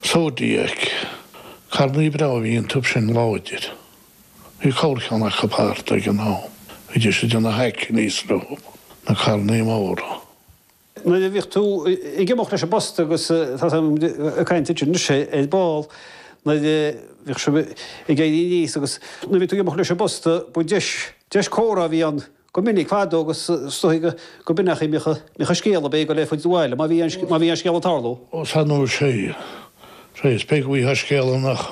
Zodiac, carrannaí breá a bhí iontu sin, láidir. Bhí corrcheann acu thart ag an am, bhíodh siad ina hackneys leo, na carrannaí móra. Nuair a bhíodh tú ag imeacht leis an bposta agus tá tú ag caint ansin anois ar ball, nuair a bhíodh sibh ag éirí aníos agus nuair a bhíodh tú ag imeacht leis an bposta, ba deis, deis comhrá a bhí ann Go minic fadó agus is dóichí gurb in an chaoi a mbíodh an scéal a bheith ag goil ar fud an bhaile má bhí an scéal ag tarlú. Ós an uair seo í, sea, is beag uaithe an scéala nach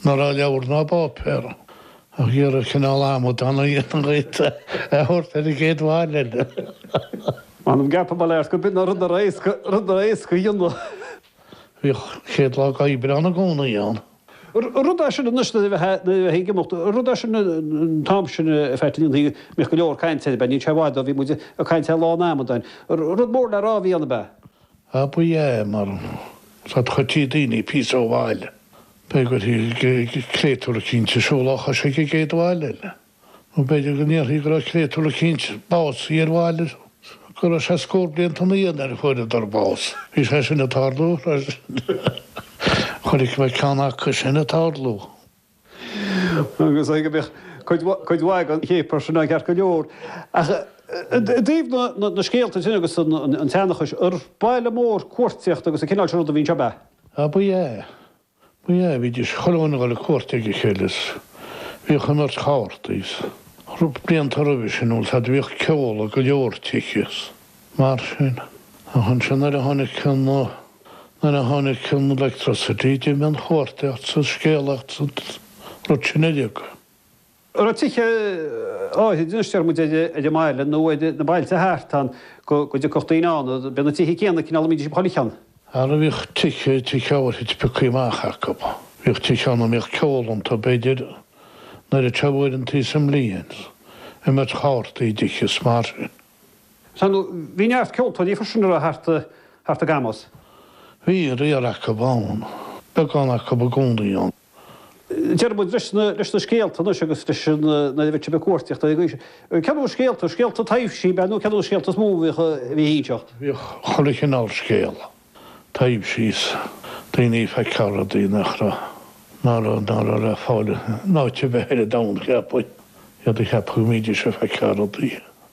raibh i leabhar ná i bpáipéar ag iarraidh cineál amadán a dhéanamh a thabhairt ar an gcéad bhaile eile. M'anam ceapadh leat gurb in é an rud ab éasca a dhéanamh. Bhíodh an chéad lá d'Aibreán i gcónaí ann. Rud é sin anois nuair a bhí tú ag imeacht, rud é sin an t-am sin ar feadh tine an tsaoil, bhíodh go leor cainte air, ab ea? Níl sé i bhfad ó bhí muid ag caint air, Lá an Amadáin. Rud mór le rá a bhí ann, ab ea? Á, b'ea, mar chuirtí daoine píosa ó bhaile, b'fhéidir go gcuirtí créatúr eicínt ag siúl dá chois chuig an gcéad bhaile eile. Nó b'fhéidir go ndéarfaí go raibh créatúr eicínt básaithe ar bhaile is go raibh sé scór blianta ina dhiaidh nuair a fuaireadar bás. Bhí sé sin ag tarlú, freisin. Chonaic mé ceann acu sin ag tarlú. Agus go mbeadh cuid mhaith den chéapar sin ceart go leor. Ach i dtaobh na scéalta sin agus an tseanchais, ar baile mór cuartaíochta agus an cineál sin ruda a bhí anseo, ab ea? Ab ea. B'ea, bhídís chuile dhuine ag dul ar cuairt ag a chéile is bhíodh imirt chártaí is rud blianta roimhe sin agus fhad a bhíodh ceol i go leor tithe is mar sin. Ach ansin nuair a tháinig an, nuair a tháinig an electricity d'imigh an chuartaíocht 's an scéalaíocht 's an rud sin uilig. raibh tithe áirithe, anois, deir muid, ar an mbaile nó ar na bailte thart ann go dtiocfadh daoine ann. B'iad na tithe céanna, cineál, a mbídís ag bailiú ann. Ara bhíodh tithe, tithe áirithe pioctha amach acu. Bhíodh tithe ann a mbíodh ceol iontu, b'fhéidir, nuair a tiubh uaireanta sa mbliain, imirt chártaí i dtithe is mar sin. Sea, ar ndóigh bhí neart ceoltóirí freisin, an raibh, thart i gCamus. Bhí riar acu ann, beagán acu i gcónaí ann. Deir muid leis na scéalta anois agus leis an, nuair a bhítí ag cuartaíocht anois. Cén cineál scéalta, scéalta taibhsí, b'ea, nó cén cineál scéalta is mó a bhí ag inseacht? Bhíodh chuile chineál scéal, taibhsí is daoine ag feiceáil rudaí nach raibh, nach raibh le fáil in áit ar bith ar an domhan, cheapfainn. Iad ag ceapadh go mbídís ag feiceáil rudaí.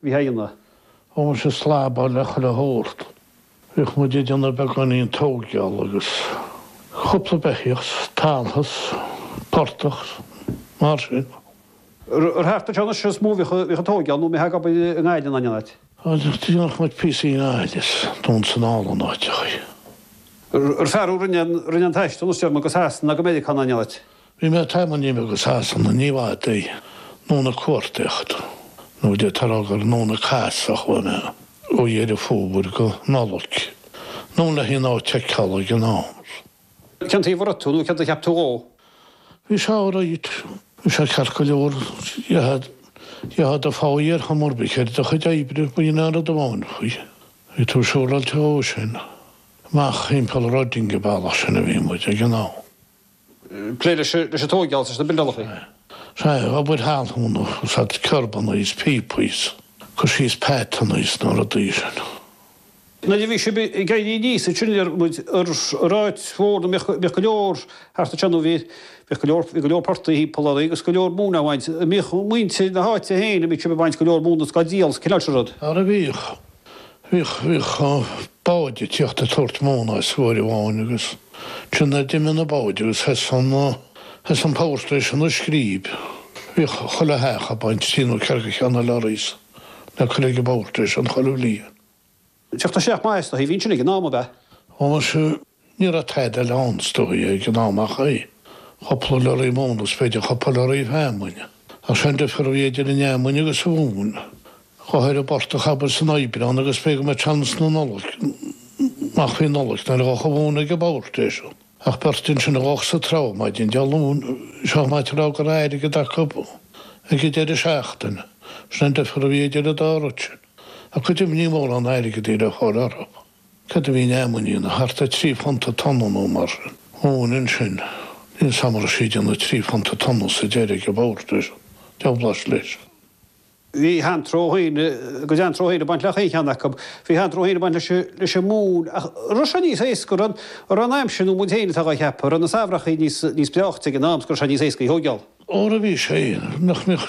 Bhí aíonna. Thógann sé slabhra le chuile shórt. Bhíodh muid ag déanamh beagáinín tóigeáil agus cúpla beithíoch is taltas, portach, mar sin. Ar thart anseo anois is mó a bhíodh an tóigeáil nó mé ag obair i nGaillimh ná in aon áit. Dhéanadh muid píosaí i nGaillimh is dún san álainn áit a chuir. Ar fear a rinne aon taisteal anois déarfaidh muid go Sasana ná go Meiriceá ná in aon áit. Bhí mé tamall imithe go Sasana ní b'fhaide ná an chuartaíocht, nó de tarogair nó na cas a chuaigh mé ó Dheireadh Fómhair go Nollaig, nó le haon áit a fheiceáil ag an am. Cén taobh a raibh tú nó céard a cheap tú dhó? Bhí sé alright. Bhí sé ceart go leor. Gheofá do pháí ar chuma ar bith ar do chuid oibre, ba shin an rud amháin faoi. Bhí tú siúráilte dhó sin. Amach thimpeall Reading an bealach sin a bhí muid, ag an am. Plé leis an tóigeáil is leis na buildálachaí. Sea, obair thalúna, ag cur síos kerbanna is píopaí is cur síos pathanna is na rudaí sin. Nuair a bhí sib ag éirí aníos ansin déarfaidh muid ar an Aird Mhóir an mbíodh go leor thart ansin nó bhí bhíodh go leor bhí go leor portaigh thimpeall oraibh agus go leor móin á bhaint, bhíodh muintir na háite féin an mbíodh sib ag baint go leor móna is gá díol is cineál sin rud. Ara bhíodh, Bhíodh báid ag tíocht ag tabhairt móna as uair amháin agus ansin nuair a d'imigh na báid agus thosaigh an Power Station i Scríb, bhíodh chuile theach ag baint trí nó ceathair de cheanna lorries le cur ag an bPower Station chuile bhliain. Tíocht isteach maith is dóigh a bhí ansin ag an am, ab ea? Ó, muise. Ní raibh tada eile ann, is dóigh, ag an am ach é. Cúpla lorraí móna is b'fhéidir cúpla lorraí feamainne. Ach seo an difear a bhí idir an fheamainn agus an mhóin, chuaigh tú ar an bportach abair san Aibreán agus b'fhéidir go mbeadh sé anonn sna Nollag, amach faoi Nollaig nó go dtiocfadh an mhóin ag an bPower Station ach beirt ansin a ghabhfadh sa trá maidin Dé Luain sé chomh maith dhuit a rá go raibh airgead acu ag an deireadh seachtaine, sin an difear a bhí idir an dá rud sin. Ach go deimhin ní mórán airgead a bhí le fáil orthu. Céard a bhí an fheamainn a dhéanamh? Thart ar thrí phunt an tonna nó mar sin. An mhóin ansin. Níl a fhios agam an raibh sí dhó nó trí phunt an tonna sa deireadh ag an bPower Station. Deabhláis leis. Bhí a hanró féin, a n-anró féin ag baint le chaon cheann acu. Bhí a hanró féin ag baint leis an móin. Ach raibh sé níos éasca, raibh an aimsir, nó an muid féin atá dhá cheapadh, raibh na samhrachaí níos breáichte ag an am, agus raibh sé níos éasca í a thóigeáil. Óra bhí sé, nach mbíodh?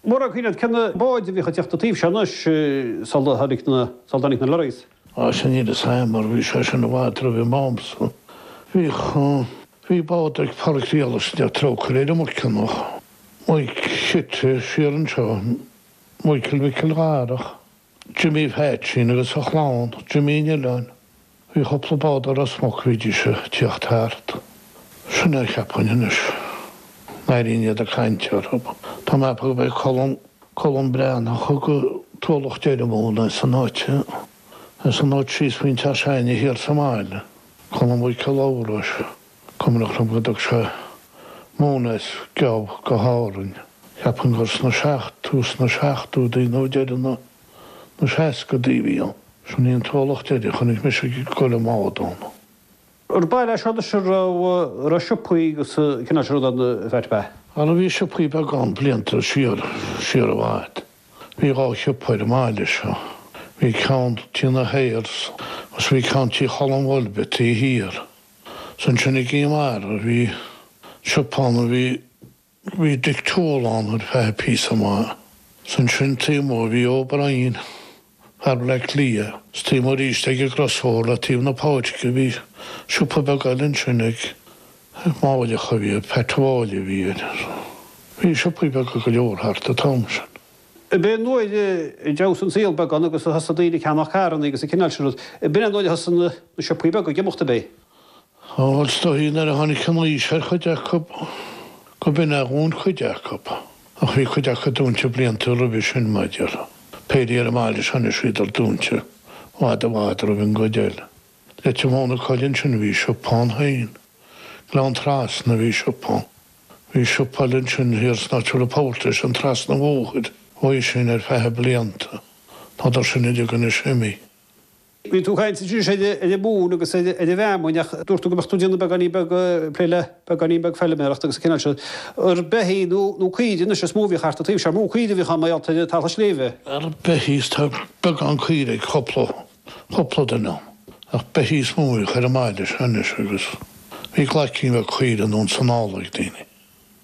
Ar cuimhin leat cé na báid a bhíodh ag teacht an taobh seo anois sula tháinig na, sula dtáinig na lorries? Á, sin iad is ea, mar bhí sé sin i bhfad roimh m'amsa. Bhíodh, bhí bád ag Pádraic Riaghallaigh sa deireadh, trócaire air, an Mhuiceanach, Muic, suite siar anseo, Maidhcil Mhicil Dharach. Jimmy Pheaitsín agus a chlann, Jimmy an Oileáin. Bhí chupla bád ó Ros Muc a bhídís a' tíocht thart. Sin é a cheapfainn anois. N'airínn iad ag caint orthu. Tá mé ag ceapadh gurb é Colm, Colm Breathnach a thug an t-ualach deireadh móna as an áit, as an áit síos faoin Teach Seáiní thiar sa mbaile, Colm Mhaidhcí Labhráis. Cuimhneach liom go dtug sé móin as geábh go hÁrainn. Cheapfainn gur sna seacht, tús na seachtóidí nó deireadh na, na seascaidí a bhí an, sin í an t-ualach deiridh a chonaic mise ag goil amach dom. Ar an mbaile seo, sea, raibh, raibh siopaí agus an cineál sin rud ann faic, b'ea? Bhal a bhí siopaí beagán blianta siar, siar i bhfad. Bhí dhá shiopa ar an mbaile seo. Bhí ceann, Tí na hAyers, agus bhí ceann Tí Cholm Bhoyle, Beití thiar. 's ansin i gCinn Mhara bhí siopa ann a bhí, bhí Dick Toole ann ar feadh píosa maith, 's ansin taobh amuigh bhí O'Brien, fear Bhleá Cliath, 's taobh amuigh aríst ag an gcrosbhóthar le taobh na páirce bhí siopa beag eile ansin ag, ag Máilleach a bhí air, Pat Mháille a bhí air, bhí siopaí beaga go leor thart an t-am sin. B'in an uair a d'fheabhsaigh an saol beagán agus a thosaigh daoine ag ceannach carranna agus an cineál sin rud. B'in an uair a thosaigh na siopaí beaga ag imeacht, ab é? Ó, is dóigh, nuair a tháinig an aois ar chuid acu, go b'in a dhún cuid acu, ach bhí cuid acu dúnte blianta roimhe sin, maidir le péire ar an mbaile seo anois, bhíodar dúnte i bhfad i bhfad roimh an gcuid eile. Leitir Móir na Coille ansin bhí siopa ann féin. Gleann Trasna a bhí siopa. Bhí siopa eile ansin thiar san áit a bhfuil an Port sin trasna an bhóthair, uaidh sin ar feadh blianta. Tádar sin uilig anois imithe. Bhí tú ag caint arís ar an mhóin agus ar an bhfeamainn ach dúirt tú go mbeadh tú ag déanamh beagáinín beag plé le beagáinín beag feiliméaracht agus an cineál sin ar beithígh nó nó caoirigh anois is mó a bhíodh thart an taobh seo. Mó caoirigh a bhíodh ann mar gheall ar an talamh sléibhe. Á, beithígh is tá beagán caoirigh ag cúpla. Cúpla duine, ach beithí is mó a bhí ar an mbaile seo anois agus bhí glaicín bheag caoirigh anonn is anall ag daoine.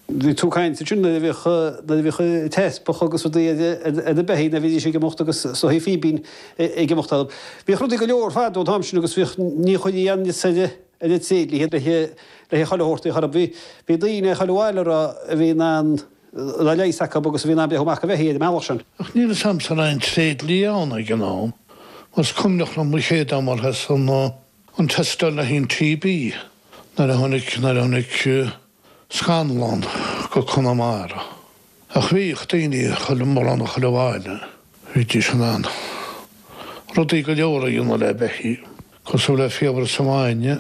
Bhí tú ag caint ansin nuair a bhíodh, nuair a bhíodh teaspach agus rudaí ar, ar na beithígh a bhídís ag imeacht agus sórt fíbín ag imeacht orthu. Bhíodh rudaí go leor fadó an t-am sin agus bhíodh, ní chuirtí aon fhios ar aon tréidlia, le haghaidh, le haghaidh chuile shórt, bhíodh, bhí daoine i chuile bhaile a raibh, a bhí in ann, a leigheas acu agus a bhí in ann breathnú amach do bheithígh ar an mbealach sin. Ach níl a fhios a'msa an raibh aon tréidlia ann ag an am, is cuimhneach liom an chéad am ar thosaigh an teisteáil le haghaidh an TB nuair a tháinig, nuair a tháinig Scanlán go Conamara. Ach bhíodh daoine, chuile, mórán i chuile bhaile, bhídís in ann rudaí go leor a dhéanamh le beithígh, cosúil le fiabhras an bhainne,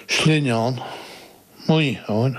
slinneán, maothán.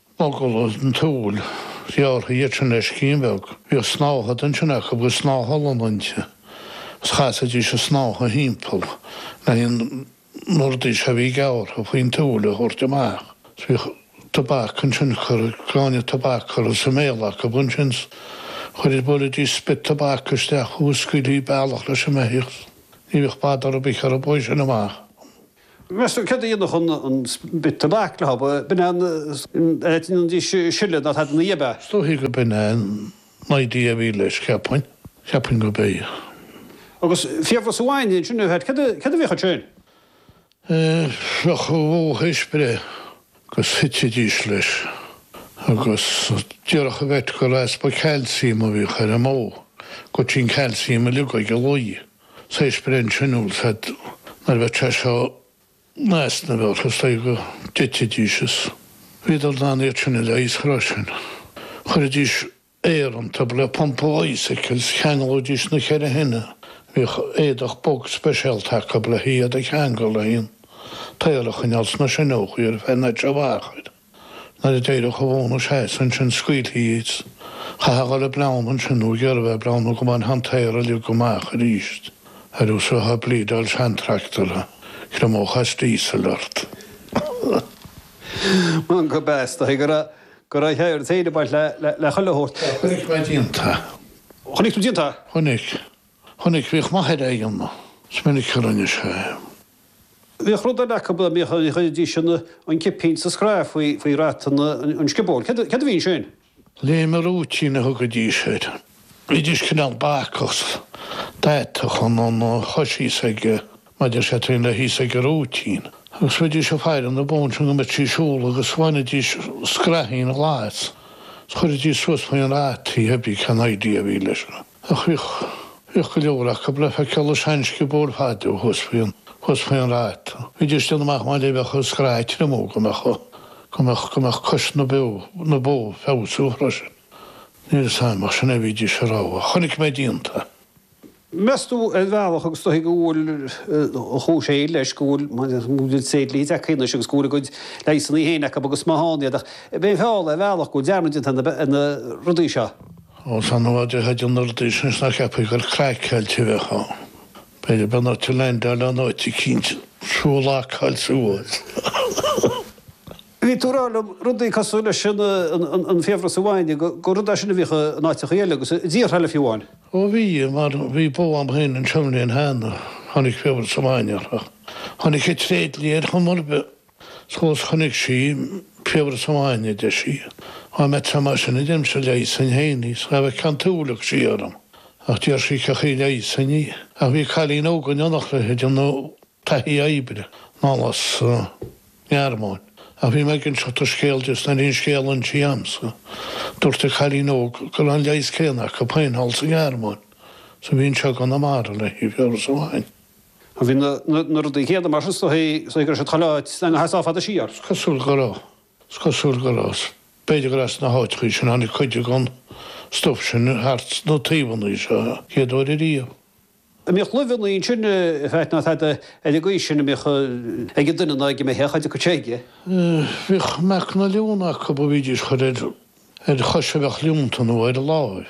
Mogall an tSúil, ghearrtha iad sin le scian bheag. Bhíodh snáthaid ansin acu agus snáth olann inti, agus chasaidís an tsnáthaid thimpeall le haghaidh an mhordís a bhí gearrtha faoin tsúil a thabhairt amach. Is bhíodh tobac ansin curtha, gráinne tobac curtha sa mbéal acu ansin. Chuiridís, bhuailidís spit tobac isteach agus scaoiltí bealach leis an mbeithíoch. Ní bhíodh badar ar bith ar an mbó uaidh sin amach. Meas tú céard a dhéanfadh an spit tobac le hobadh, b'in é an áit ina ndís sileadh ná tada ina dhiaidh. Is dóichí go b'in é an idea a bhí leis, cheapfainn, cheapfainn gob ea. Agus fiabhras an bhainne ansin, ar chait, céard, céard a bhíodh ansin? Bheadh an bhó thar éis breith agus thitidís leis agus déarfadh an vet gur easpa cailciam a bhíodh ar an mbó, go dtéadh an cailciam uilig ag an lao. Thar éis breith ansin dhóibh is nuair a bheadh sé seo in easnamh orthu, is dóigh go dtitfidís is bhíodar in ann iad sin a leigheas, ach roimhe sin. Chuiridís aer iontub le pumpa bicycle is cheanglaídís na ceithre shine, bhíodh éadach bog speisialta acu le hiad a cheangal le haghaidh an t-aer a choinneáil sna sineachaí ar feadh roinnt mhaith achair. Nuair a d'éireodh an bhó ina seasamh ansin scaoiltí iad. Chaithfeá dhul ag bleán ansin nó ag iarraidh bheith ag bleán nó go mbeadh an t-aer uilig amach aríst ar nós a bheith ag bleedeáil seantractor a thriomódh as díosal ort. M'anam go bpeastaí go raibh an t-aer féin ag baint le chuile shórt. Sea, chonaic mé díonta. Chonaic tú díonta? Chonaic. Chonaic. Bhíodh m'athair dhá dhéanamh. Is minic a rinne sé é. Bhíodh rud eile acu a gcuiridís an cipín sa scraith faoi rata an sciobóil. Céard a bhí ansin? Léim rúitín a thugaidís air. Bhídís cineál bacach, d'atadh an, an chois thíos ag, maidir sé taobh le thíos ag an rúitín. Agus bhídís ag faire na mbó ansin go mbeidís ag siúl agus bhainidís scraithín ghlas is chuiridís suas faoin rata í, cébí cén idea a bhí leis sin. Ach bhíodh, bhíodh go leor acu le feiceáil i seansciobóil fadó thuas faoi an, thuas faoi an rata. Bhídís ag déanamh amach mar a bheadh an scraith ag triomú go mbeadh, go mbeadh, go mbeadh cois na beo, na bó ag feabhsú freisin. Níl 'fhios a'm ach sin é a bhídís a' rá. Chonaic mé díonta. Meas tú ar bhealach agus dóichí go bhfuil a chúis fhéin leis, go bhfuil, mar go bhfuil na tréidliachaí anois agus go bhfuil a gcuid leigheasannaí fhéin acu agus maith ann iad ach b'é an feall é ar bhealach go bhfuil dearmad déanta ar na, ar na rudaí seo. Ó sea, nuair a déarfá na rudaí seo anois nach gceapfaí gur craiceáilte a bheifeá. B'fhéidir go mbeadh ort a leaindeáil in áit eicínt is thú a lockáil suas. Bhí tú ag rá liom rudaí cosúil leis an, an, an fiabhras an bhainne, go, gur rud é sin a bhíodh in áiteachaí eile agus i dtíortha eile fiú amháin. Ó bhí, mar bhí bó a'm fhéin anseo an bhliain cheana, tháinig fiabhras an bhainne uirthi. Tháinig an tréidlia ar chuma ar bith. 'S chonaic sí fiabhras amháin, a deir sí. Á, má tá mar sin, a deirimse, leigheasfainn fhéin í, 's cha bhfeiceá an t-ualach sí orm. Ach d'iarr sí cén chaoi a leigheasfainn í, ach bhí cailín óg in éineacht léithe ag déanamh taithí oibre, anall as an nGearmáin, ach bhí mé ag inseacht an scéal di, 's nuair a bhí an scéal insithe a'msa, dúirt an cailín óg go raibh an leigheas céanna acu féin thall sa Ghearmáin, 's a bhí anseo i gConamara le haghaidh fiabhras amháin. Bhí na rudaí céanna mar sin is cosúil go raibh siad chuile áit ach a dhul sách fada siar? Is cosúil go raibh. Is cosúil go raibh. B'fhéidir gur as na háiteachaí sin a tháinig cuid den stuif sin thart sna taobhannaí seo an chéad uair ariamh. An mbíodh luibheannaí ansin, a Pheaid, ná tada ar an gcaoi sin a mbíodh ag an duine ná ag an mbeithíoch, cha dtiocfadh sé aige? Bhíodh meacan an leonta acub a bhídís a chur ar chois a bheadh leonta nó ar láimh.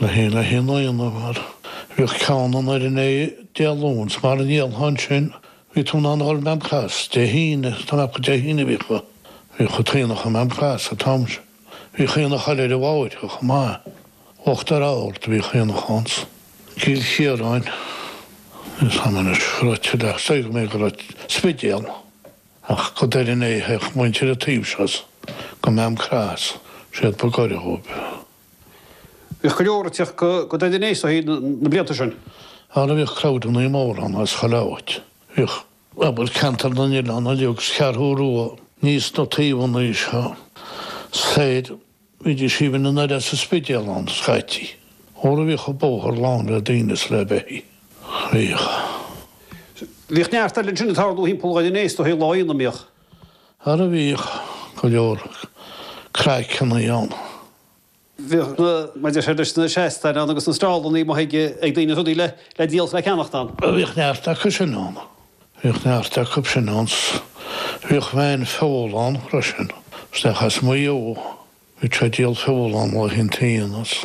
Le haon le haonach a dhéanamh, mar a bheadh ceann i nDoire an Fhéich Dé Luain, 's mara ndíolfá ansin, bhí tú in ann dhul Maam Cross Dé hAoine, 's tá mé ag ceapadh gur Dé hAoine a bhíodh, bhíodh an t-aonach i Maam Cross an t-am sin. Bhíodh aonach eile ar an bhFairche chomh maith. Uachtar Ard bhíodh aonach ann 's i gCill Chiaráin, níl a fhios a'm anois an raibh tuilleadh déarfadh mé go raibh, an Spidéal, ach go Doire an Fhéich a théadh muintir an taobh seo 's go Maam Cross, is iad ba gaire dhóib. Bhíodh go leor ag teacht go dtí Doire an Fhéich is dóichí na blianta sin. Ara bhíodh crowdannaí mór ann as chuile áit, bhíodh, abair, Ceantar na nOileán uilig agus an Cheathrú Rua aníos sna taobhannaí seo soir, bhídís aoibhinn na nOileán 's an Spidéal ann, scaití, ara bhíodh an bóthar lán le daoine is le beithígh. Bhíodh. Bhíodh neart eile ansin ag tarlú thimpeall Dhoire an Fhéich is dóichí lá aonaigh, an mbíodh? Ara bhíodh go leor craiceanna ann. Bhíodh na, maidir leis na seastáin ann agus na stallannaí a mbíodh ag daoine rudaí le díol is le ceannacht ann. Bhíodh neart acu sin ann. Bhíodh neart acu sin ann 's bhíodh veain feola ann freisin. Isteach as Maigh Eo, bhí sé ag díol feola ann le haghaidh an tí anois.